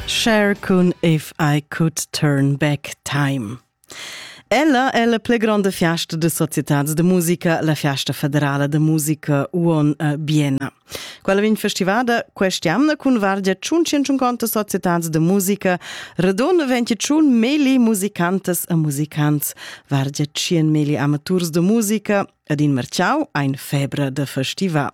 Cher cun If I Could Turn Back Time. Ella è la pli grande fiasta de società de musica, la fiasta federala de musica Uon eh, Biena. Quella vegn festivada quest'anno cun vargia 150 società de musica, redonne 21 meli musicantes e musicants, vargia 100 meli amaturs de musica Ed in merciau ein febra da festival.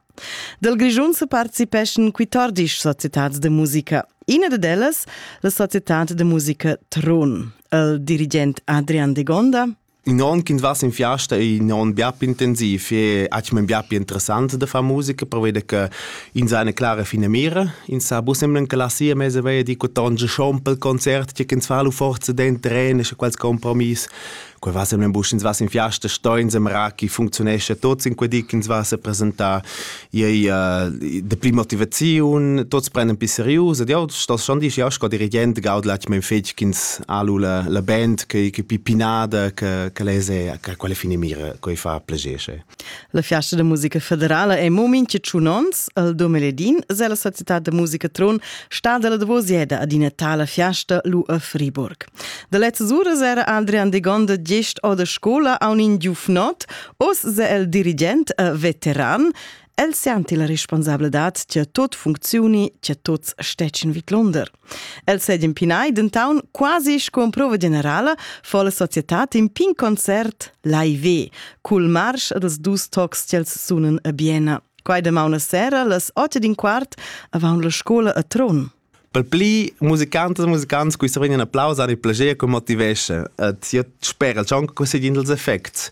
Dal Grischun se participeschan quittordisch societads de musica. Ina ded ellas, la societad de musica Tron. Il dirigent Adrian de Gonda In on kind vas in fiasta è in on bia intensiv e hat mir bia più interessant da far musica per vedere che in seine klare fine mira in sa bus semblen che la sia mese vei di co tonge schon pel concert che ins fa lu forza den trene e quels compromiss Quei va sem busch ins va in fiasta stoins em rachi functionescha tots in quei di ins va se presentar ei de pli motivaziun tots prenden pi serius ed jau stos schon dir ja sco dirigent gaud latg mein fetg ins alu la la band che che pi pinada che che lese che quelle fine mira quei fa plegesche La fiasta da musica federala è mo mincha tschun ons, al Dumeledin es la società da musica Tron stada la davosieda ad ina tala fiasta lu a Friburg. Da lezzas uras era Adrian de Gonda gest o da scola a un giufnot, os se el dirigent a veteran, el senti la responsabladad che tot funczioni, che tots stecen vid Londer. El sed impinai dentaun quasi sco prova generala fa la societad in pin concert live cul marsch dels dus tocs ch'els sunan a Biena. Quai demaun a sera las 8 din quart avant la scola a Tron. Per pli musicantes e musicants qui se vegnan applaus an il plager che motivesce. Et io spera ciò che conseguind els effects.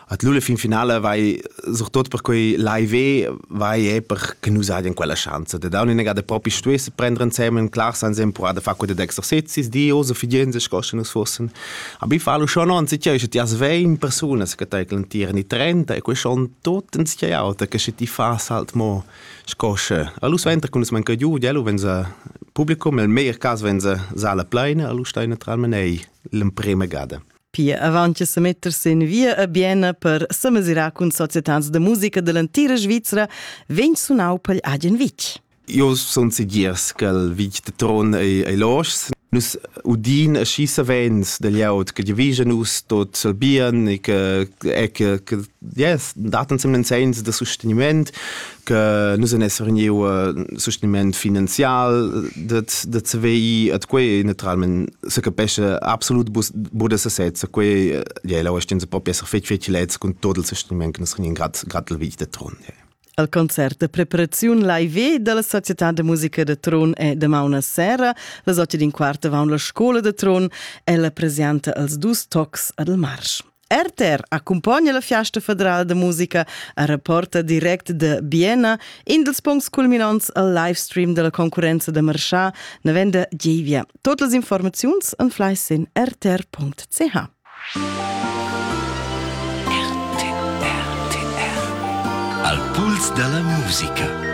At l'ula fin finala vai surtut per quei live vai e per che nus hajan quella schanza da daun ina gada propi stuess prender insieme ein clars ansem pro da fa quei da exercizis di osa fidienza scossen nus fossen aber ich falo schon an sich ist ja svein personas che tai clantieren i 30 e quei schon tot ins ja auta che se ti fas halt mo scosse a lus venter kun es man giu dielo wenn se publikum el mehr cas wenn se sala pleine a lus steine tral menei l'emprema gada Pia avant che semetter sin via a Biena per semesirar cun societans de musica dell'entira Svizra, vegn sunau pegl agen vitg. Io sun segirs che il vitg de Tron ei, ei loschs. Nus udin schi savens del ieut che divisa nus tot il bien e che, e che, che yes, dat ensemen segns da sosteniment che nus en esser niu uh, sosteniment finanzial dat da CVI at quei naturalment se capesce absolut bude se sezza quei ja la stin se proprio esser fetg fetg lez con tot il sosteniment che nus rinien grad grad il vit de tron yeah. Al concert de preparaziun live dalla Società de Musica de Tron è damauna sera, les otto din quart avon la scola de Tron, è la presenza als dus tocs ad el marsch. RTR accumpagna la Fiasta federala da musica a rapporta direct da Biena, in dels puncts culminants al livestream della concurenza da Marchà, na venda Gievia. Tot las informaziuns an fleiss in rtr.ch. RTR. Al puls della musica.